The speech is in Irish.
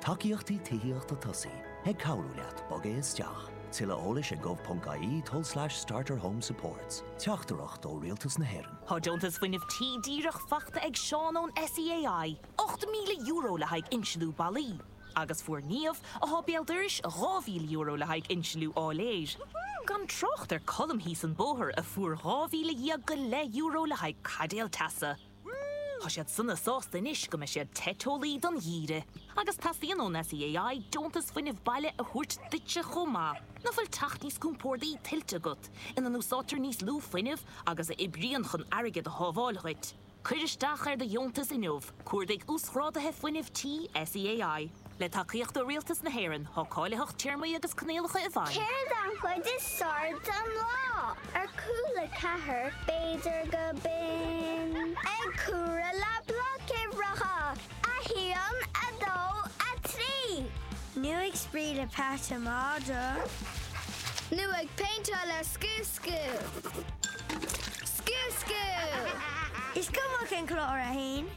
Tacaíochtaí Tithíochta Tosaithe ag cabhrú leat bogadh isteach. Tuilleadh eolais ag gov.ie tulslais starterhomesupports Teachtaireacht ó Rialtas na hÉireann. Tá deontas Fuinneamh tí díreach faighte ag Seán ón SEAI, €8,000 le haghaidh insealú ballaí, agus fuair Niamh, atá béal dorais, €2,000 le haghaidh insealú áiléir, gan trácht ar Colm thíos an bóthar a fuair 12,000 go leith euro le haghaidh caidéal teasa. Tá siad sona sásta anois go mbeidh siad te teolaí don gheimhreadh. Agus teastaíonn ón SEAI deontas fuinnimh baile a thabhairt duitse chomh maith. Ná fuil teach níos compórdaí tuillte agat, ina n-úsáidtear níos lú fuinnimh agus a oibríonn chun airgead a shábháil dhuit? Cuir isteach ar do dheontas inniu, cuardaigh Uasghráduithe Fuinnimh Tí SEAI. Le tacaíocht ó Rialtas na hÉireann, tá cáilitheacht téarmaí agus coinníollacha i bhfeidhm. Céard an chuid is fearr den lá? Ar Cúla4, b'fhéidir go binn. Ag comhaireamh le Blocuimhreacha! 1, 2, 3. Nó ag spraoi le peata madra. Nó ag péinteáil le scuabscú. Scuabscú! Is cuma cén clár a théann.